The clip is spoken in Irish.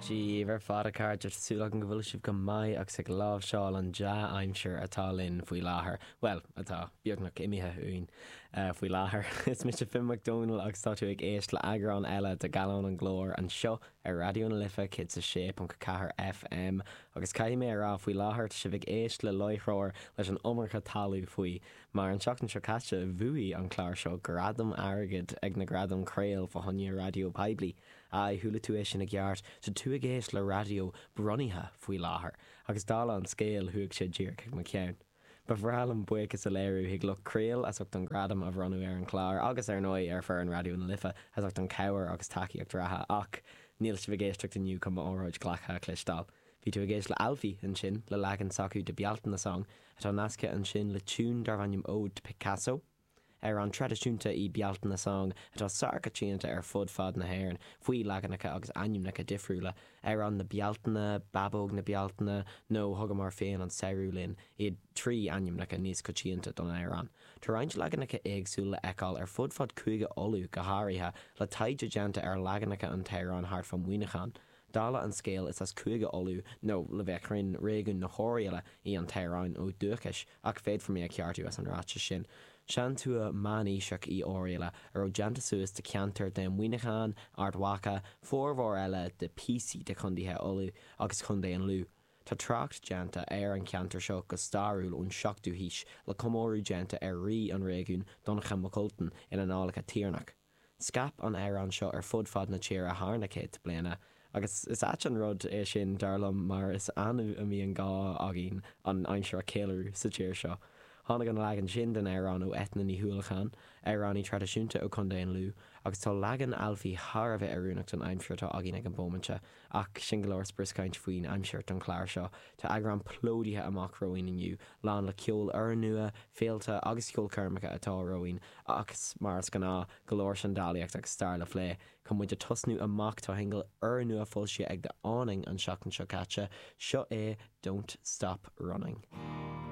Sibh ar fad a chairde, tá súil agam go bhfuil sibh go maith agus ag láimhseáil an dea-aimsir atá linn faoi láthair. Bhuel, atá, beagnach imithe uainn faoi láthair. Is mise Finn Mac Dónaill agus tá tú ag éist le eagrán eile de Gallán an gClár anseo ar Raidió na Life 106.4 FM agus caithfidh mé a rá faoi láthair tá sibh ag éist le láithreoir leis an iomarca talú faoi Mar an tseachtain seo caite bhuaigh an clár seo gradam airgid ag na gradaim Craol fá choinne raidió poiblí. Aye, chuala tú é sin i gceart, tá tú ag éist le raidió bronnaithe faoi láthair, agus dála an scéil chuaigh sé díreach chuig mo cheann. Ba bhreá liom buíochas a léiriú chuig lucht craol as ucht an gradam a bhronnadh ar an chlár agus ar ndóigh ar foireann Raidió na Life as ucht an cabhair agus tacaíocht reatha ach níl sibh ag éisteacht inniu chun m'óráid ghlactha a chloisteáil. Bhí tú ag éist le Alfie, ansin, le leagan s'acu de Bealtaine Song, atá nasctha ansin le tiún darb ainm Ode to Picasso, amhrán traidisiúnta í Bealtaine Song atá sárcoitianta ar fud fad na hÉireann faoi leaganacha agus ainmneacha difriúla, Amhrán na Bealtaine, Babóg na Bealtaine nó Thugamar Féin an Samhradh linn, iad trí ainmneacha níos coitianta don amhrán. Tá roinnt leaganacha éagsúla le fheiceáil ar fud fad Cúige Uladh go háirithe, le taighde déanta ar leaganacha an t-amhráin thart fá Muineachán, Dála an scéil, is as Cúige Uladh, nó, le bheith cruinn, réigiún na hOirialla, í an t-amhráin ó dhúchais, ach féadfar mé a cheartú as an ráiteas sin. Seantuath meánaoiseach í Oirialla, a raibh déanta suas de cheantair de Mhuineachán, Ard Mhacha, formhór eile de píosaí de chondaetha Uladh, agus Chondae an Lú. Tá trácht déanta ar an cheantar seo go stairiúil ón seachtú haois, le comóradh déanta ar rí an réigiún, Donnchadh Mac Ultain, in Annálacha Tiarnaigh. Scaip an amhrán seo ar fud fad na tíre thar na céadta bliana agus is ait an rud é sin, dar liom, mar is annamh a mbíonn gá againn an aimsir a cheiliúradh sa tír seo. Tháinig an leagan sin den amhrán ó Eithne Ní hUallacháin, amhránaí traidisiúnta ó Chontae an Lú, agus tá leagan Alfie thar a bheith oiriúnach don aimsir atá againn ag an bomaite, Ach sin go leor brioscaint faoin aimsir don chlár seo. Tá eagrán plódaithe amach romhainn inniu, lán le ceol úrnua, féilte agus ceolchoirmeacha atá romhainn ach mar is gnáth, go leor seandálaíocht agus stair le phlé. Chun muid a tosnú amach, tá shingil úrnua foilsithe ag The Awning an seachtain seo caite, seo é Don't Stop Running.